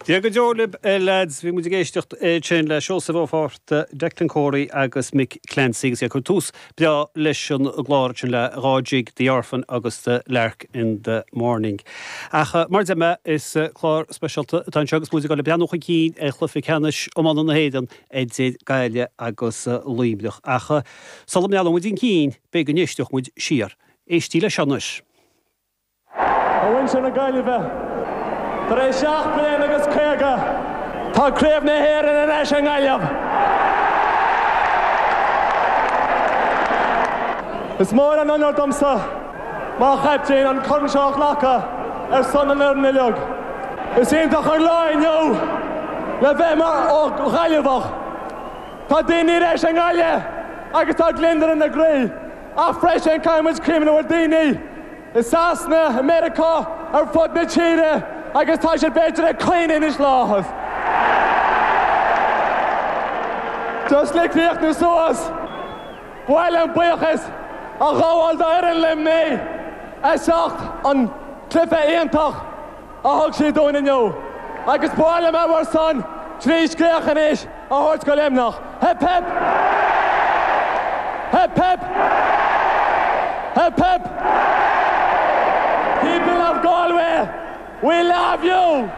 Dia go deo libh lads, bhí muid ag éisteacht ansin le Seosamh Ó Fátharta, Declan Corey agus Mick Clancy agus iad ag cur tús breá leis an gclár ansin le dhá jig, The Orphan agus The Lark in the Morning. Ach mar deir mé, is clár speisialta atá anseo agus muid ag dul le breathnú chun cinn ar chluife ceannais iomána na hÉireann idir Gaillimh agus Luimneach. Ach sula mbreathnóidh muid chun cinn, b'fhéidir go n-éisteodh muid siar. Éistí leis seo anois. A mhuintir na Gaillimhe, tar éis seacht mbliana agus caoga, tá Craobh na hÉireann ar ais i nGaillimh! Is mór an onóir domsa, mar chaiptín, an corn seo a ghlacadh ar son an fhoireann uilig. Is iontach an lá inniu le bheith mar Ghaillimheach. Tá daoine ar ais i nGaillimh agus tá gliondar ina gcroí. Ach freisin caithfidh muid cuimhneamh ar daoine i Sasana, i Meiriceá, ar fud na tíre agus tá siad b'fhéidir ag caoineadh anois i láthair. Just le críochnú suas, ba mhaith liom buíochas a ghabháil d'fhoireann Luimnigh as ucht an cluiche iontach a thug siad dúinn inniu, agus b'fhearr liom mar sin trí scréach anois a thabhairt do Luimneach. Hip hip! Hip hip! Hip hip! People of Galway, we love you!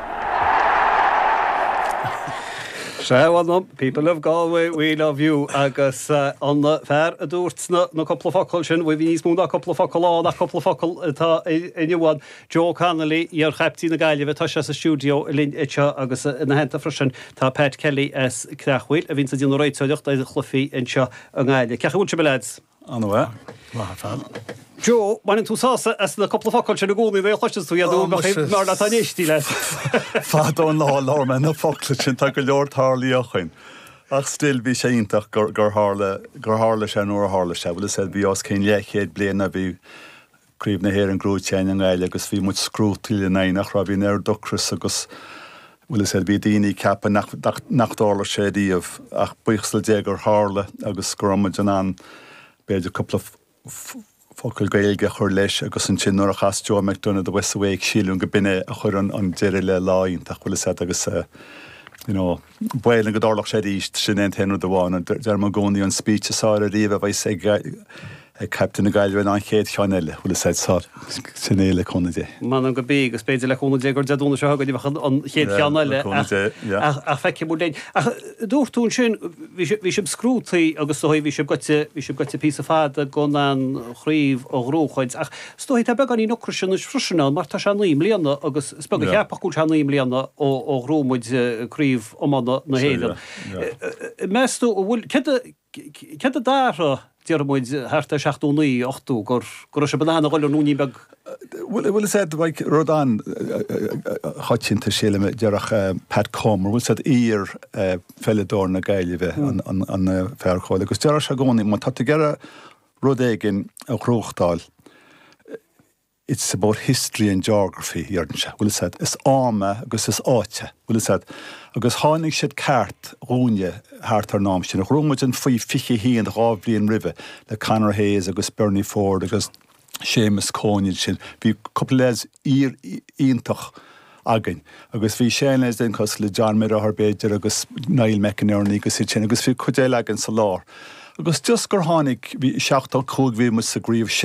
Sea, bhuel no, people of Galway, we love you, agus an fear a dúirt na cúpla focal sin, bhuel bhí níos mó ná cúpla focal ann ach cúpla focal atá inniu ann. Joe Connolly, iar-chaiptín na Gaillimhe, tá sé sa stiúideo linn anseo agus ina theannta freisin tá Pat Kelly as Creachmhaoil a bhíonns ag déanamh réiteoireacht ar chluichí anseo i nGaillimh. Cén chaoi a bhfuil sibh, leaids? An-mhaith. Maith ar fad. Joe, baineann tú sásamh as na cúpla focal sin i gcónaí nuair a chloiseas tú iad nó bheadh aon leabhar leat dá n-éistí leat. Fada an lá a labhair mé na focla sin, tá go leor tarlaithe againn. Ach still, bhí sé iontach gur tharla sé nuair a tharla sé. Bhfuil fhios a'd, bhí os cionn leathchéad bliain ó bhí Craobh na hÉireann gnóite againn i nGaillimh agus bhí muid scrúdtaí in eineacht raibh bhíonn an t-ocras agus bhfuil fhios a'd bhí daoine ag ceapadh nach nach dtarlódh sé riamh ach buíochas le Dia gur tharla agus go raibh muid in ann b'fhéidir cúpla focal Gaeilge a chur leis agus ansin nuair a chas Joe McDonagh The West's Awake, sílim go b'in é a chuir an deireadh le lá iontach bhfuil fhios a'd agus you know. B'aoibhinn go dtarlódh sé arís, sin é an t-aon rud amháin. Deirim i gcónaí an speech is áille ariamh a bheas ag caiptín na Gaillimhe ná an chéad cheann eile, bhfuil fhios a'd, so, sin é le cúnamh Dé. M'anam go b'í, agus b'fhéidir le cúnamh Dé gur Dé Domhnaigh seo chugainn a bheadh an chéad cheann eile, ach feicfidh muid linn. Ach dúirt tú ansin, bhí sibh scrúdtaí agus bhí sibh goite, bhí sibh goite píosa fada gan an chraobh a ghnóchaint, ach Is dóigh tá beagáinín ocrais anois freisin ann mar tá sé naoi mbliana agus is beag a cheapfadh go bhfuil sé naoi mbliana ó ghnóthaigh muid Craobh Iomána na hÉireann. Meas tú, an bhfuil, céard a d'athraigh, déarfaidh muid, thart ar seachtó naoi, ochtó, go raibh sibh in ann a dhul an ruainnín beag? Bhuel, is é rud an-choitianta sílim a déarfadh Pat Comer, bhfuil a fhios agat, iar-pheileadóir na Gaillimhe an fear cúil agus déarfadh sé i gcónaí, má tá tú ag iarraidh rud éigin a ghnóthachtáil It's about history and geography, a deireann sé, an bhfuil a fhios agat, is am é agus is áit é, an bhfuil a fhios agat, agus tháinig siad ceart dhúinne thart ar an am sin, ghnóthaigh muid an faoi 21, dhá bhliain roimhe, le Conor Hayes agus Bernie Forde agus Seamus Coen ansin, bhí cúpla lads iontach againn. Agus bhí sean-lads cosúil le John mo dheartháir b'fhéidir agus Niall McInerney agus iad sin agus bhí cuid eile againn sa lár. Agus just gur tháinig, bhí, 75 bhí muid sa gcraobh